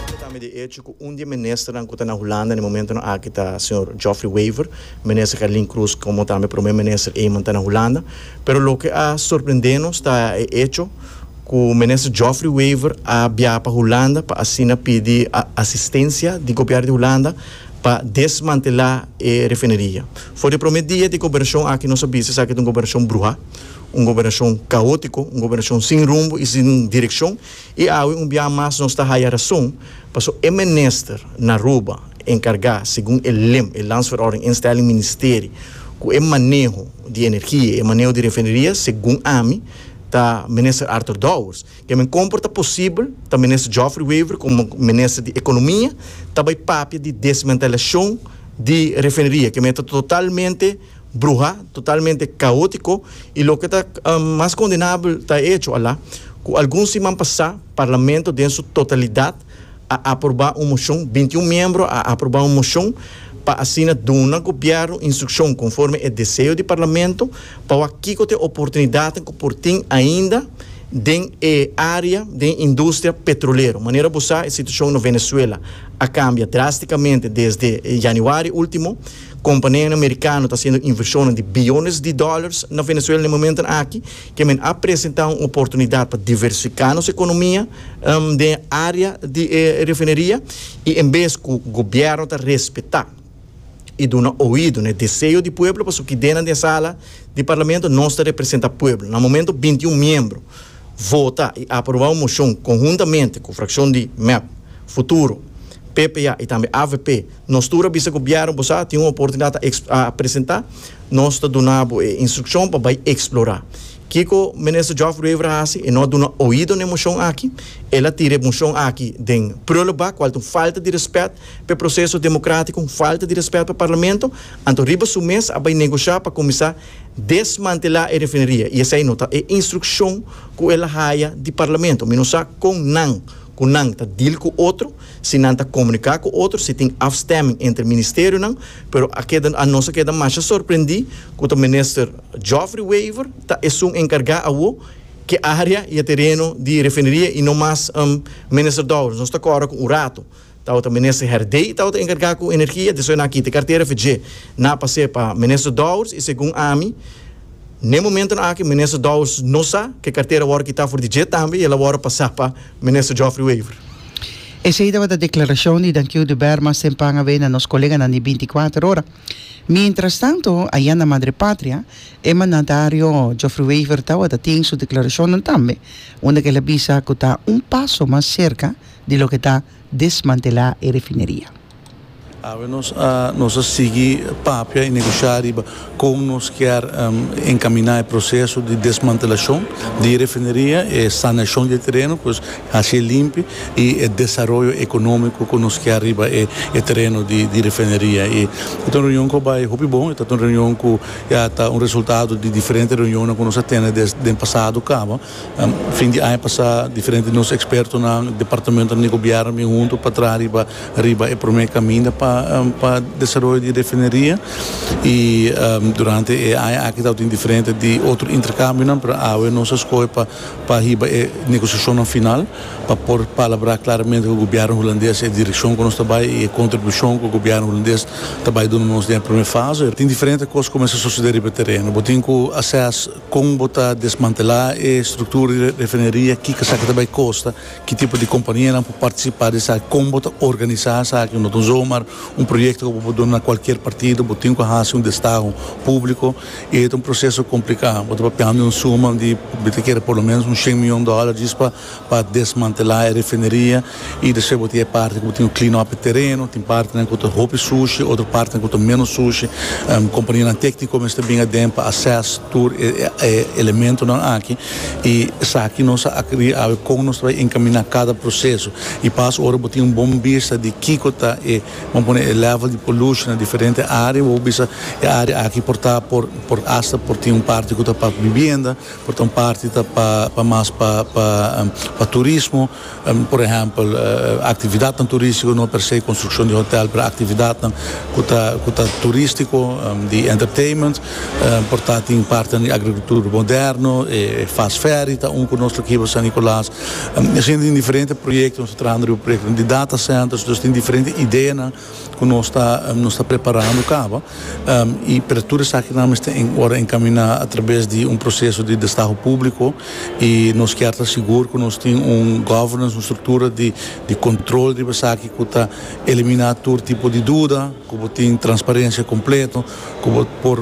Kende tambe di echo ku un di e ministernan ku ta na Hulanda na e momentonan aki ta señor Joffrey Wever, Minister Gerlin Croes komo tambe Prome Minister Eman ta na Hulanda. Pero loke a sorprende nos ta e echo ku Minister Joffrey Wever a biaha pa Hulanda pa asina pidi asistencia di Gobièrnu di Hulanda pa desmantelá e refineria. For di e prome dia di gobernacion aki nos a bisa esaki ta un gobernacion bruhá. un gobernashon kaótiko, un gobernashon sin rumbo i sin direkshon, i awe un biaha mas nos ta haya rason paso e minister na Aruba enkargá segun e lim, e landsverordening instelling ministeri, ku e maneho di energia i e maneho di refineria segun ami ta minister Arthur Dowers. Ke men komper ta posibel ta minister Geoffrey Wever komo minister di ekonomia ta bai papia di desmantelashon di refineria, ke men ta totalmente. bruha, totalmente kaotiko i loke ta mas kondenabel ta e echo ala ku algun siman pasá Parlamento den su totalidat a aprobá un moshon, binti un miembro a aprobá un moshon pa asina duna Gobièrnu instrukshon konforme e deseo di Parlamento pa wak kiko ta e oportunidatnan ku por tin ainda den e área den industria petrolero. Manera bo sa e situashon na Venezuela a kambia drástikamente desde Yanüari último. Companianan Mericano ta haciendo inversionan di billones di dollars na Venezuela na e momentonan aki, ke men a presenta un oportunidad pa diversifica nos economia den e area di e refineria y en bes cu gobierno ta respeta y duna oido na e deseo di pueblo, pasobra kidennan den e sala di Parlamento nos ta representa pueblo. Na momento binti y un miembro vota y aproba un mocion conhuntamente cu fraccion di mep, Futuro, PPA y tambe avp, Nos tur a bisa Gobièrnu bo sa tin un oportunidat ta a presentá, nos ta duna bo e instrukshon pa bai eksplorá. Kiko Minister Geoff Ruever a hasi? E no a duna oido na e moshon aki. El a tira e moshon aki den prulebak, kual ta un falta di rèspèt pa e proseso demokratiko, un falta di rèspèt pa Parlamento. Anto riba su mes a bai negoshá pa kuminsá desmantelá e refineria i esei no ta e instrukshon ku el a haya di Parlamento. Mi no sa kon nan ku nan ta dil ku otro. si nan ta komuniká ku otro, si tin afstemming entre ministerionan, pero a keda nos a keda masha sorprendí ku ta Minister Geoffrey Wever ta esun enkargá awo ke área i e tereno di refineria i no mas Minister Dowers. Nos ta kòrda ku un ratu tabata Minister Herdey tabata enkargá ku energia, desoe nan a kita e kartera fe dje nan a pas'é pa Minister Dowers i segun ami n'e momentonan aki Minister Dowers no sa ku e kartera a wòrdu kitá for di dje tambe i el a wòrdu pasá pa Minister Geoffrey Wever. Esei tabata declaracion di Dankiu de Berma sempan awe na nos coleganan di binticuater ora. Mientrastanto, aya na Madre Patria, e mandatario Geoffrey Wever tabata tin su declaracionnan tambe, unda kela bisa cu ta un paso mas cerca di loke ta desmantela e refineria. Awe nos a nos a sigui papia y negociá riba con nos kier encaminá e proceso di desmantelacion di e refineria, e sanacion di e tereno cu nos hacié limpi y e desaroyo economico cu nos kier riba e tereno di e refineria. E ta un reunion cu a bay hopi bon, e ta un reunion cu ya ta un resultado di diferente reunionnan cu nos a tene den pasado caba. Fin di aña pasá diferente di nos ekspertonan, departamentonan di gobièrnu bin huntu pa traha riba riba e promé kaminda pa pa desaroyo di e refineria. I durante e aña aki tabatin diferente di otro interkambionan pero awe nos a skohe pa pa hiba e negosiashonnan final pa por palabrá klaramente ku gobièrnu hulandes e direkshon ku nos ta bai i e kontribushon ku gobièrnu hulandes ta bai duna nos den e promé fase. Tin diferente kos ku kumesa sosodé riba e tereno. Bo tin ku assess. Kon bo ta desmantelá e struktura di refineria, kiko esaki ta bai kosta, ki tipo di kompanianan por partisipá di esaki, kon bo ta organisá esaki, no ta un zomaar un proyekto ku bo por duna na kualkier partido, bo tin ku hasi un destaho públiko i e ta un proseso kompliká. Bo ta papiando di un suma di bo ta kere por lo menos un shen mion dòler djis pa pa desmantelá e refineria i despues bo tin e parti ku bo tin ku clean up e tereno, tin partinan ku ta hopi sushi, otro partinan ku ta ménos sushi, kompanianan tékniko mester bin aden pa assess tur e elementonan aki i esaki nos a akrí awe kon nos ta bai enkaminá kada proseso i pas ora bo tin un bon bista di kiko ta e bon pone e level di pollution na diferente área bo bisa e área aki por ta por por asta por tin un parti ku ta pa bibienda, Por ta un parti ta pa pa mas pa pa pa turismo, por ehèmpel aktividatnan turístiko, no per se konstrukshon di hotèl, pero aktividatnan ku ta ku ta turístiko, di entertainment, por ta tin partinan di agrikultur moderno, e fast ferry ta un ku nos lo kiba San Nicolas, asina tin diferente proyektonan nos ta trahando riba proyektonan di data centers, dus tin diferente ideanan. ku nos ta nos ta preparando kaba i pero tur esakinan mester wòrdu enkaminá atrabes di un proseso di destaho públiko i nos kier ta sigur ku nos tin un governance un struktura di di kontrol riba esaki ku ta eliminá tur tipo di duda ku bo tin transparensia kompleto ku bo por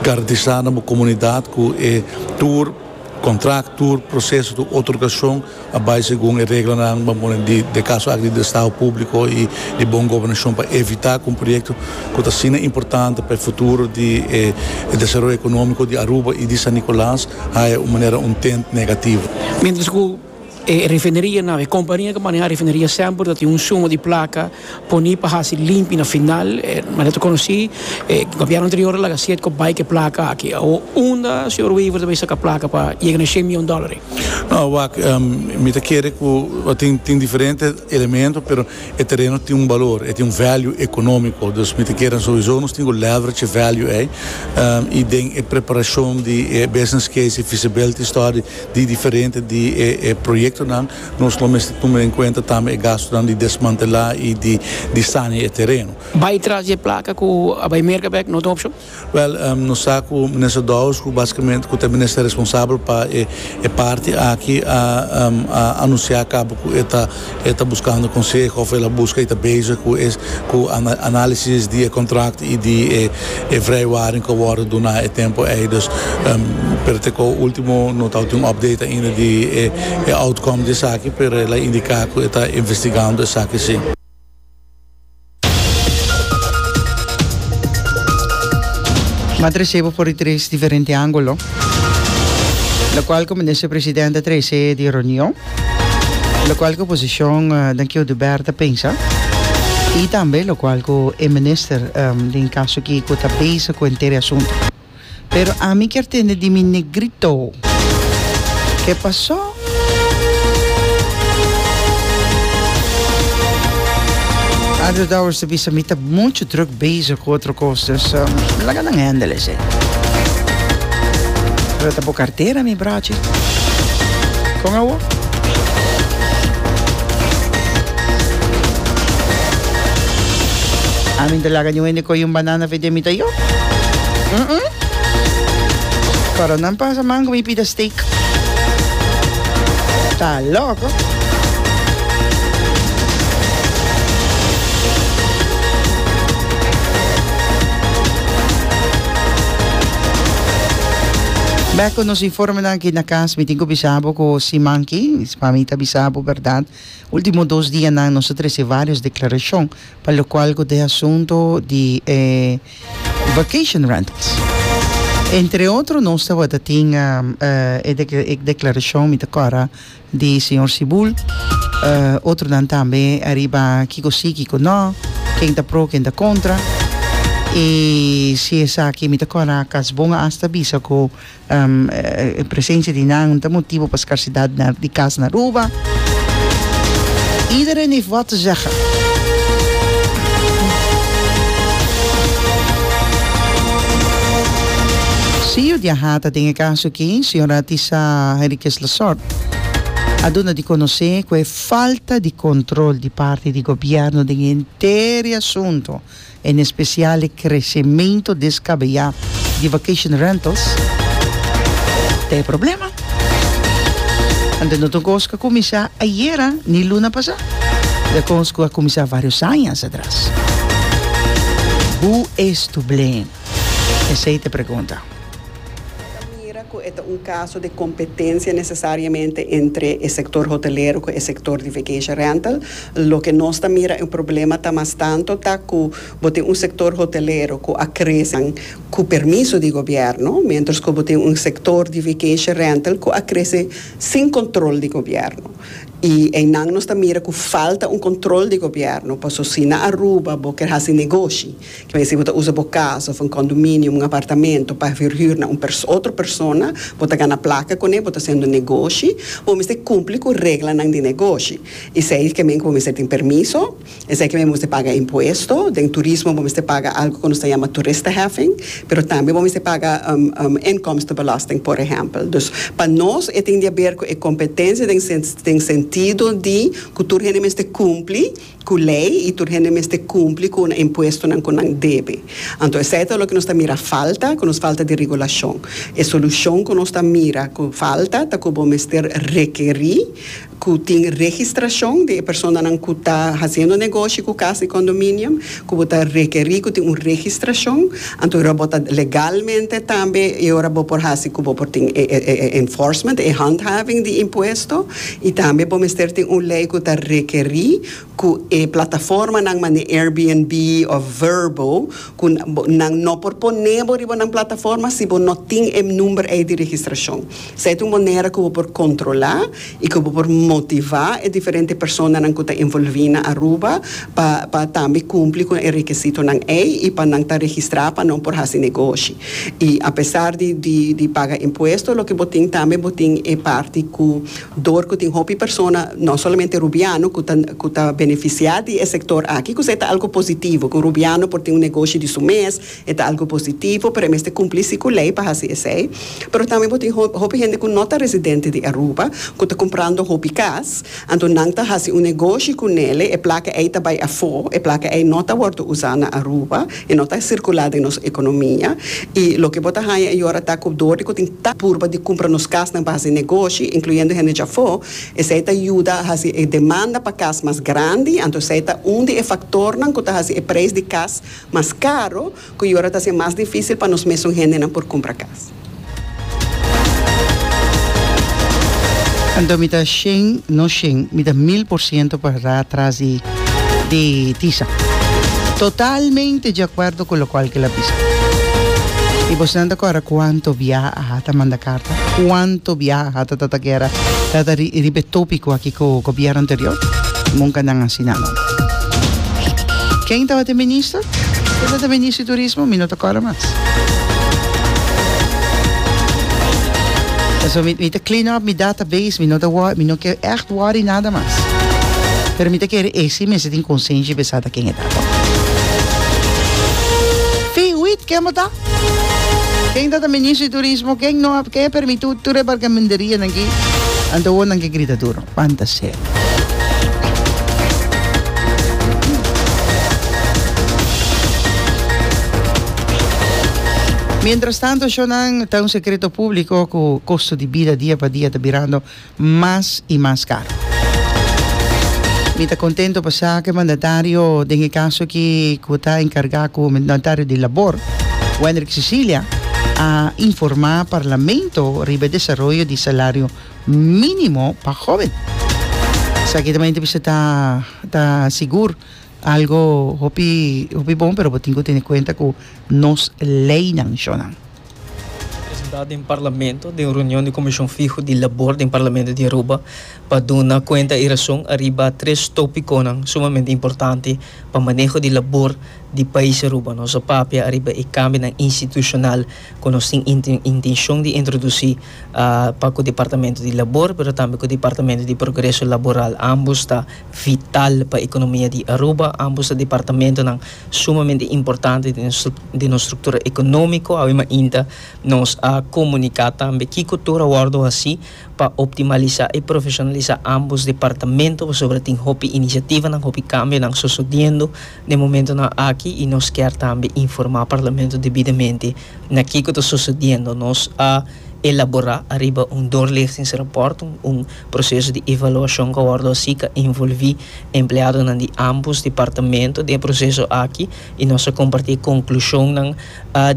garantisá na bo komunidat ku e tur kontrakt tur proseso tur otorgashon. a bai segun e reglanan ban pone di e Caso Act di Drestado Publico y di Bon Gobernacion pa evita cu un proyecto cu ta asina importante pa e futuro di e desaroyo economico di Aruba y di San Nicolas haya un manera un tint negativo. Mientras cu e refineria nan of e compania cu maneha refineria semper ta tin un suma di placa Poni pa hasi limpi na final, manera ta konosí, e gobièrnu anterior a laga siet ku a bai ku e plaka aki. Awo unda señor Wever ta bai saka plaka pa yega na e shen mion dòler ei? No, wak, mi ta kere ku tin, tin diferente elemento, pero e tereno tin un balor, e tin un value ekonómiko. Dus mi ta kere souiso nos tin ku leverage e value ei, i den e preparashon di e business case, e feasibility study di diferente di e proyektonan. Nos lo mester tuma den kuenta tambe e gastunan di desmantelá i di saña e tereno. Bai tras di e plaka ku a bai merka bèk no ta un opshon? Wèl, nos sa ku Minister Dowers, ku basikamente ku ta e minister responsabel pa e parti aki, a anunsiá kaba ku e ta e ta buskando konseho òf el a buska i ta bezig ku e ku análisis di e kontrakto i di e E vrijwaring cu a wordo duna e tempo ey dus pero te cu ultimo no tabata un update ainda di e outcome di esaki pero el a indica cu e ta investigando esaki si. Mata resebo for di tres diferente angulo, locual cu Minister President a trae esey di reunion. lokual ku oposishon den ki oduber ta pensa i tambe lokual ku e minister den kaso aki ku ta bezig ku henter e asuntu. Pero ami kier tende di mi negrito ke pasó? Andrew Dowers ta bisa mi ta muchu druk bezig ku otro kos dus laga nan hendel esei. Pero ta bo kartera mi bra. Kon awor? A mi ta laga di un hende koyo un banana fe den mi ta yo. Mm-mm. Coronan pasa mango mi pida steak. Ta loco. Back Nos informenan aki na cas mi tin cu bisa bo cu si manki, pa mi ta bisa bo berdad, ultimo dos dianan nos a trece varios declaracion pa locual cu ta e asunto di e vacation rentals. Entre otro nos tabata tin e declaracion mi ta cora Di señor Sibul. Otronan tambe ariba kiko si, kiko no, ken ta pro, ken ta kontra. I si esaki mi ta kòrda akas bon a hasta bisa ku e presensia di nan ta motibu pa skarsidat di kas na Aruba. Iedereen heeft wat te zeggen. Siyu Diahata den e kaso aki, señora Tisa Henriquez. Resort a duna di konosé ku e falta di kontrol di parti di gobièrnu den henter e asuntu, en espesial e kresementu deskabeyá di vacation rentals, ta e problema. Anto no ta un kos ku a kuminsá ayera ni luna pasá, ta e kos ku a kuminsá vários añas atras. Hu es tu blé? Esei ta e pregunta. E ta mira cu e ta un caso de competencia necesariamente entre e sector hotelero cu e sector di vacation rental. Loke nos ta mira e problema ta mas tanto ta cu bo tin un sector hotelero cu a crece cu permiso di gobierno, mientras cu bo tin un sector di vacation rental cu a crece sin control di gobierno. Y einan nos ta mira cu falta un control di gobierno, paso si na Aruba bo ker haci negoshi, Vezi bo ta usa bo casa of un condominium, un apartamento, pa verhuur na un otro persona, bo ta gana placa con e, bo ta haciendo negoshi, bo mester cumpli cu reglanan di negoshi. Esey ke men cu bo mester tin permiso, esey ke men bo mester paga impuesto, den turismo bo mester paga algo cu nos ta yama toeristenheffing, pero tambe bo mester paga inkomstenbelasting, por ehempel. Dus pa nos e tin di haber cu e competencia den sentido di cu tur hende mester cumpli. Cu ley y tur hende mester cumpli cu un impuestonan cu nan debe. Anto esey ta loke nos ta mira falta, cu nos falta di regulacion. E solucion cu nos ta mira cu falta ta cu bo mester rekeri cu tin registracion di e personanan cu ta haciendo negoshi cu cas di condominium, cu bo ta rekeri cu tin un registracion, anto e ora bo ta legalmente tambe e ora bo por haci cu bo por tin e enforcement, e handhaving di impuesto. I tambe por mester tin un lei ku ta rekerí ku e plataformanan manera Airbnb òf Vrbo ku nan no por poné bo riba nan plataforma si bo no tin e number ei di registrashon. Esei ta un manera ku bo por kontrolá i ku bo por motivá e diferente personanan ku ta envolví na Aruba pa pa tambe kumpli ku e rekesitonan ei i pa nan ta registrá pa nan por hasi negoshi. Y a pesar di di paga impuesto loke bo tin tambe bo tin e parti cu door cu tin hopi persona no solamente Rubiano cu ta cu ta beneficia di e sector aki cu se ta algo positivo cu Rubiano por tin un negoshi di su mes e ta algo positivo pero e mester cumpli si cu ley pa haci esey pero tambe bo tin hopi hende cu no ta residente di Aruba cu ta comprando hopi cas. Anto nan ta hasi un negoshi ku Nele, e plaka ei ta bai afó, e plaka ei no ta wòrdu usá na Aruba, e no ta sirkulá den nos ekonomia. I loke bo ta haña e yora ta ku dor di ku tin ta purba di kumpra nos kas na bas di negoshi, inkluyendo hende dja afó, esei ta yuda a hasi e demanda pa kas mas grandi, anto esei ta un di e faktornan ku ta hasi e preis di kas mas karo. Cu y ora ta haci mas dificil pa nos mesun gendenan por cumpra cas. Anto mi ta shen, no shen, mi ta mil por ciento pa ra tras di di tisa. Totalmente di acuerdo cu locual cu el a bisa. Y bosnan ta cora cuanto bia a hata manda carta, cuanto bia a hata tata guera, tata ri riba e topico aki cu gobierno anterior? Nunca nan a haci nada. Ken tabata e minister? Kunda ta Ministri Turismo mi no ta kòrda mas. Pasobra mi mi ta clean up mi database mi no ta wor mi no ke ègt worry nada mas pero mi ta kere esi mester tin konsenshi be sa ta ken e ta tò. Fiwit ken bo ta? Ken ta ta Ministri Turismo ken no ap ken a permití tur e barkamenterianan ki anto wonan ke grita duro. Fantasia. Mientras tanto shownan ta un secreto público cu costo di bida dia pa dia ta birando mas y mas caro. Mi ta contento pasaque mandatario den e caso aki cu ta encarga cu mandatario di Labor, Wendrick Cecilia, a informa Parlamento riba e desaroyo di salario minimo pa hoben. Esaki ta mente bisa ta ta sigur algo hopi hopi bon pero bo tin ku tene kuenta ku nos leinan shonan. Representado den Parlamento den reunion di Komishon Fiho di Labor den Parlamento di Aruba pa duna kuenta e rason ariba tres topikonan sumamente importante pa maneho di labor di pais Aruba. Nos a papia ariba e kambionan institushonal ku nos tin intenshon di introdusí pa ku Departamento di Labor pero tambe ku Departamento di Progreso Laboral, ambos ta vital pa ekonomia di Aruba, ambos ta departamentonan sumamente importante den nos struktura ekonomiko, awe mainta nos a komuniká tambe kiko tur a wòrdu hasi pa optimalisá i profeshonalisá ambos departamento pasobra tin hopi inisiativanan, hopi kambionan sosodiendo. den momentonan aki y nos kier tambe informa Parlamento debidamente na kico ta sucediendo. Nos a elabora ariba un doorlichtingsrapport, un proceso di evaluacion cu a wordo haci cu a envolvi empleadonan di ambos departamento den e proceso aki y nos a comparti e conclusionnan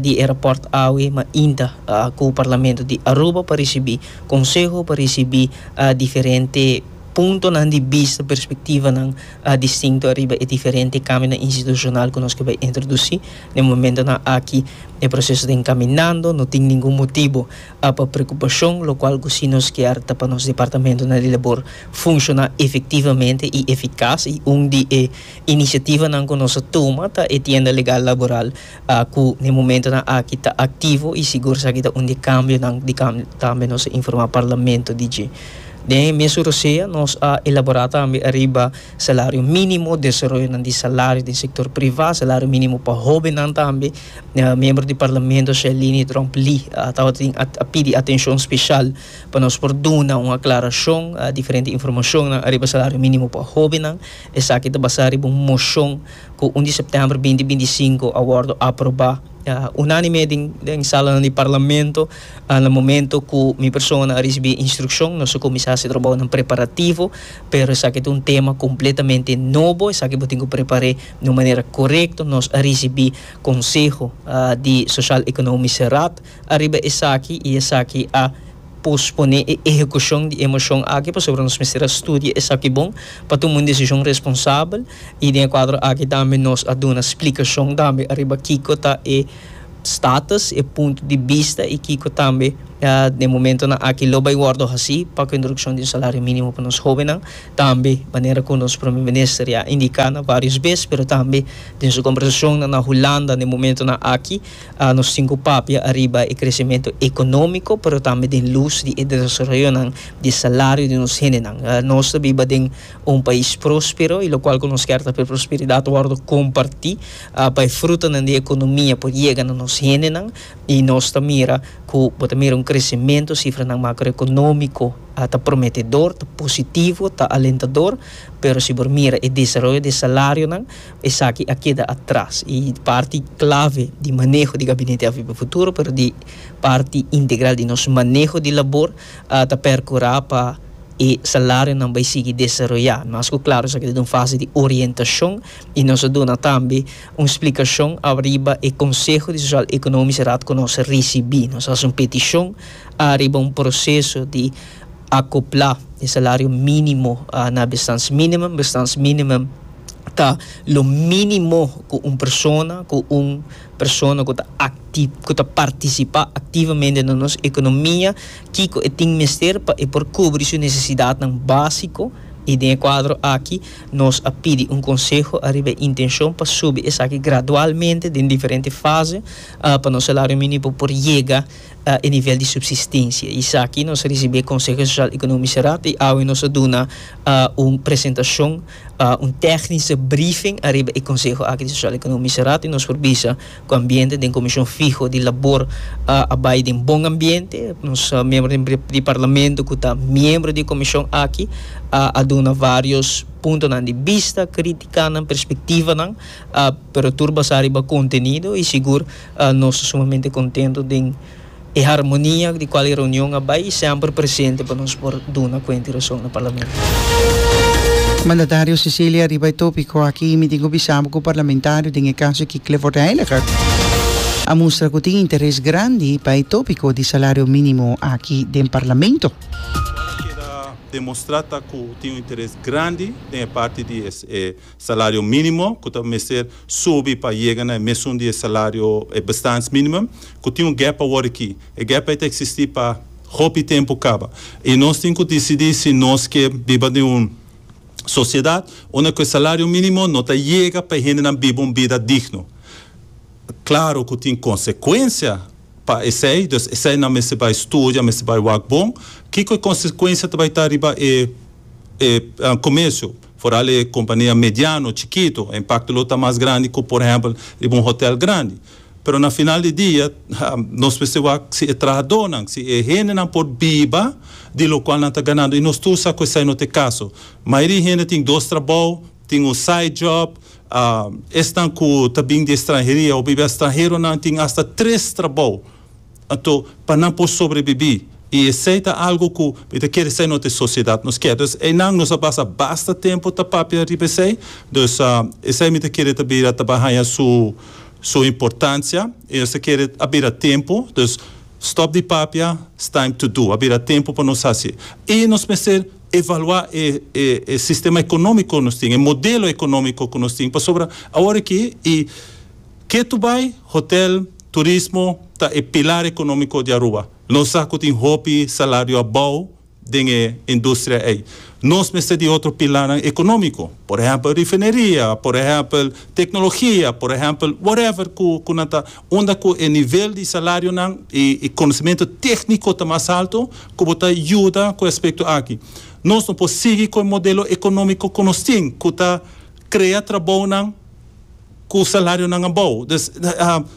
di e rapport awe mainta cu Parlamento di Aruba pa ricibi conseho, pa ricibi diferente puntonan di bista, perspectivanan. a distinto ariba e diferente kamionan institushonal ku nos ke bai introdusí. Den momentonan aki e proseso ta enkaminando, no tin ningun motibu pa preokupashon, lokual ku si nos kier ta pa nos departamentonan di labor funshoná efektivamente i efikas. I un di e inisiativanan ku nos a tuma ta e tienda legal laboral Aku na e momentonan aki ta aktivo i sigur esaki ta un di e kambionan di tambe nos a informá Parlamento di dje. Den e mes su rosea nos a elaborá tambe ariba salario mínimo, desaroyonan di salario den sektor privá, salario mínimo pa hóbennan tambe. Miembro di Parlamento Shelini Drump Lee tabata a pidi atenshon speshal pa nos por duna un aklarashon, diferente informashonnan ariba salario mínimo pa hóbennan. Esaki ta basá riba un moshon. cu un di september binti binti i sinku a wordo aproba unanime den salanan di Parlamento na momento cu mi persona a ricibi e instruccion. Nos a cuminsa haci e trabounan preparativo pero esaki ta un tema completamente nobo, esaki bo tin cu prepar'e di un manera corecto. Nos a ricibi conseho di Sociaal Economische Raad. Ariba esaki i esaki a posponé e ehekushon di e moshon aki pasobra nos mester a studia esaki bon pa tuma un desishon responsabel i den e kuadro aki tambe nos a duna splikashon tambe ariba kiko ta e status, e punto di bista i kiko tambe den e momentonan aki lo bai wòrdu hasi pa ku e introdukshon di un salario mínimo pa nos hóbennan. Tambe manera ku nos Prome Minister ya a indiká na vários bes pero tambe den su kombersashonnan na Hulanda na e momentonan aki, Nos tin ku papia ariba e kresementu ekonómiko, pero tambe den lus di e desaroyonan di e salario di nos hendenan. Nos ta biba den un pais próspero, i lokual ku nos kier ta ku e prosperidat wòrdu kompartí pa e frutanan di e ekonomia por yega na nos hendenan. I nos ta mira ku bo ta mira un kresementu, sifranan makroekonómiko ta prometedor, ta positivo, ta alentador, pero si bo mira e desaroyo di e salarionan, Esaki a keda atras y parti clave di maneho di Gabinete AVP Futuro pero di parti integral di nos maneho di labor ta percura pa e salarionan bay sigui desaroya. Mas cu claro esaki ta den un fase di orientacion y nos a duna tambe un splicacion ariba e Conseho di Social Economisch Raad cu nos a ricibi. Nos a haci un peticion ariba un proceso di acopla e salario minimo na bestans minimum, bestans minimum. ta lo minimo cu un persona, cu un persona cu ta acti, cu ta participa activamente na nos economia, kico e tin mester pa e por cubri su necesidadnan basico, y den e cuadro aki nos a pidi un conseho ariba e intencion pa subi esaki gradualmente den diferente fase, pa nos salario minimo por yega e nivel di subsistencia. Y esaki nos a ricibi e Conseho Social Economice Raad y awe nos a duna un presentacion. un tèknische briefing ariba e konseho aki di Sosial Ekonomische Raad i nos por bisa ku ambiente den komishon fiho di labor a bai den bon ambiente. Nos miembro di di di Parlamento ku ta miembro di e komishon aki a duna vários puntonan di bista, kritikanan, perspektivanan pero tur basá riba kontenido i sigur nos ta sumamente kontento den E harmonia di cual e reunion a bay semper presente pa nos por duna cuenta y razon na Parlamento. Mandatario Cecilia riba e topico aki mi tin cu bisa bo cu parlamentario den e caso aki Clifford Heiliger a mustra cu tin interes grandi pa e topico di salario minimo aki den Parlamento. Cual a keda demostra ta cu tin un interes grandi den e parti di e. Salario minimo cu ta mester subi pa yega na e mesun di e salario, e bestaandsminimum, cu tin un gap awor aki. E gap ei ta existi pa hopi tempu caba. I nos tin cu dicidi si nos ke biba den un sociedad unda cu e salario minimo no ta yega pa e hendenan biba un bida digno. Claro cu tin consecuencia pa esey, dus eseynan mester bay studia, mester bay wak bon. Kico e consecuencia ta bay ta riba e comercio? Foral e kompania mediano, chikito, e impakto lo ta mas grandi ku por ehèmpel riba un hotèl grandi. Pero na final di dia, nos mester wak si e trahadónan, si e hendenan por biba di lokual nan ta ganando. I nos tur sa ku esei no ta e kaso. Mayoria di hende tin dos trabou, tin un side job. Esnan ku ta bin di ekstranheria òf biba estranheronan tin asta tres trabou. Anto, pa nan por sobrebibí, i esei ta algu ku mi ta kere sa e no ta e sosiedad nos kier. Dus einan nos a basa basta tempu ta papia riba esei. Dus esei mi ta kere ta bira ta ba haña su su importansia i nos ta kere a bira tempu. Dus stop di papia, it's time to do. A bira tempu pa nos hasi. I nos mester evaluá e e e sistema ekonómiko ku nos tin, e modelo ekonómiko ku nos tin, pasobra awor aki i. Ke tu bai? Hotel, turismo ta e pilar economico di Aruba. Nos sa cu tin hopi salario a bou den e industria ey. Nos mester di otro pilarnan economico, por ehempel rifineria, por ehempel tecnologia, por ehempel whatever cu cu nan ta unda cu e nivel di salarionan y y conocimento tecnico ta mas alto cu bo ta yuda cu e aspecto aki. Nos no por sigui cu e modelo economico cu nos tin cu ta crea trabounan. cu salarionan abao. Dus,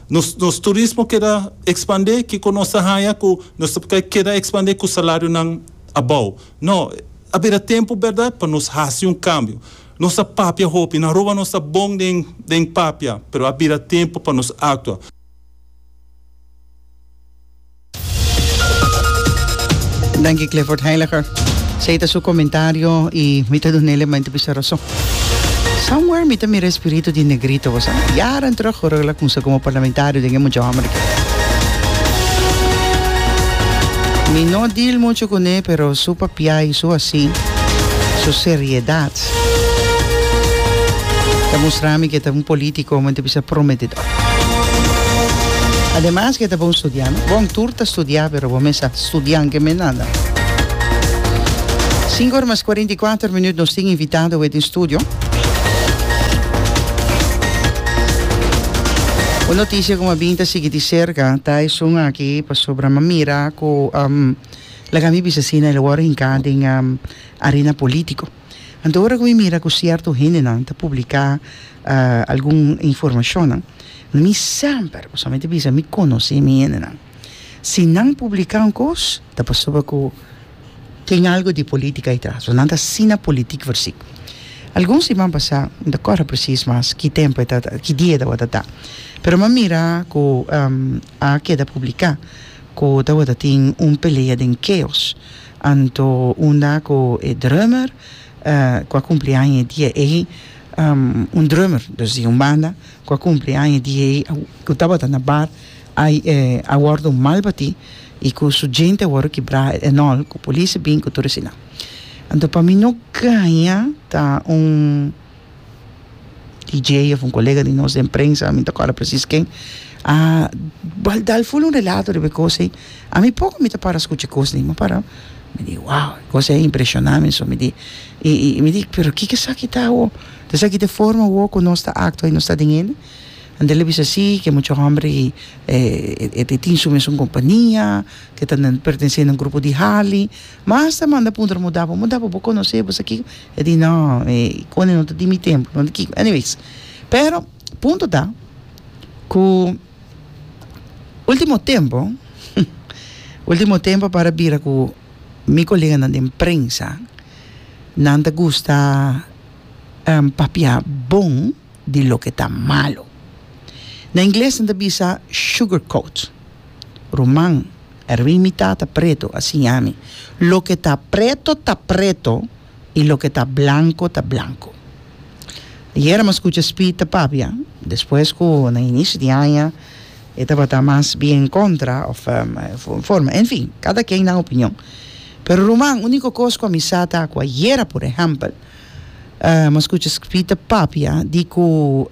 nos, nos turismo keda expande, kico nos ta haya cu nos ta keda expande cu salarionan abao? No, a bira tempo, berdad, pa nos haci un cambio. Nos a papia hopi, na Aruba nos ta bon den, den papia, pero a bira tempo pa nos actua. Danki Clifford Heiliger. Sei ta su comentario y mi ta dunele mente bisa razón. Somewhere mi ta mira espíritu di negrito, vos jaren terug hoor ik la kunsa como parlamentario den mucho hombre. Mi no deal mucho con él, pero su papia y su así, su seriedad, ta mostrami que ta un político, mente bisa prometedor. Ademas ke ta bon studia, no? Bon tur ta studia pero bo mes a studian ke mes nada. Sinku ora mas kuarenta i kuater minut nos tin invitado awe den studio. Un notisia ku a bin ta sigui di serka ta esun aki pasobra mi a mira ku laga mi bisa asina el a wòrdu hinká den arena polítiko. Anto ora ku mi mira ku sierto hendenan ta publiká algun informashonnan, mi semper usualmente bisa mi konosé mi hendenan. Si nan publiká un kos ta pasobra ku tin algu di polítika detras, nan ta asina politik vèrsì. Algun siman pasá, no ta kòrda presis mas ki tempu e ta, ki dia e tabata ta, pero mi a mira ku a keda publiká ku tabata tin un pelea den Keos. Anto unda cu e drummer cu a cumpli aña e dia ey, un drummer dus di un banda cu a cumpli aña e dia ey cu tabata na bar a wordo mal batí y cu su djente a wordo kibrá enol cu policia a bin cu tur esina. Anto pa mi no caña ta un. TJ of un colega di nos den prensa, a mi ta acorda precies ken, a bal dal full un relato riba e cos ei. A mi poco mi ta para scucha e cos dei, mi a para, mi di wow, e cos ei a impresiona mi, so mi di, y, y mi di, pero kiko esaki ta awo? Ta esaki ta e forma awo cu nos ta actua y nos ta den hende? Anto el a bisa si, ke mucha homber ei e tin su mesun compania, ke ta pertenece na un grupo di Harley. Mas ta manda puntra muda bo muda bo bo conoce bo sa kiko e di no e cone no ta di mi tempo no ta kiko anyways pero punto ta cu ultimo tempo ultimo tempo para bira cu mi coleganan den prensa nan ta gusta papia bon. di loke ta malu. Na ingles nan ta bisa sugarcoat. Ruman, Erwin mi tata preto a siña mi, loke ta preto ta preto y loke ta blanco ta blanco. Ayer a mas scucha Speed ta papia, despues cu na inicio di aña e tabata mas bien en contra of forma, en fin, cada quien nan opinion. Pero ruman, unico cos cu a mi sa ta cu ayer, por ehempel, Nos cucha scribi ta papia di cu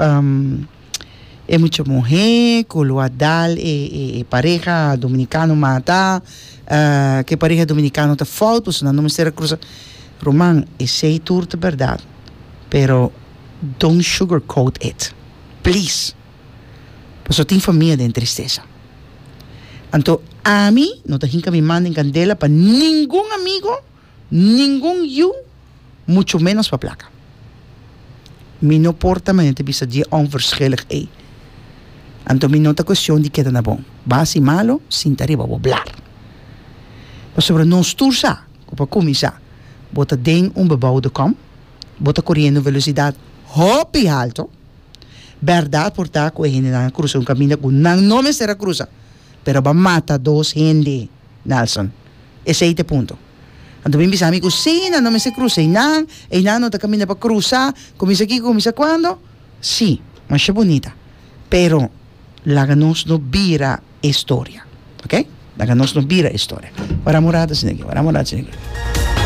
e mucha muhe cu lo a dal e pareha Dominicano mata, cu e pareha Dominicano ta fout pasobra nan no mester a crusa. Ruman, esey tur ta berdad, pero don't sugar coat it, please, pasobra tin famia den tristesa. Anto, ami no ta hinca mi man den candela pa ningun amigo. Ningun yu, mucho menos pa plaka. Mi no por ta manera ta bisa dje onverschillig ey. Anto mi no ta cuestion di keda na bon. Basi i malo, sinta riba bo blar. Pasobra nos tur sa cu pa cuminsa bo ta den un beboude com, bo ta coriendo un velocidad hopi halto. Berdad por ta cu e hendenan a crusa un caminda cu nan no mester a crusa, pero bo a mata dos hende, Nelson. Esei ta e punto. Anto mi bisa mi ku si nan no mester krusa einan, einan no ta kaminda pa krusa kuminsa kiko kuminsa kuando? Si, masha bunita. Pero laga nos no bira e historia. Ok? Laga nos no bira e historia. Wara morada, señor Guillo, wara morada, señor Guillo.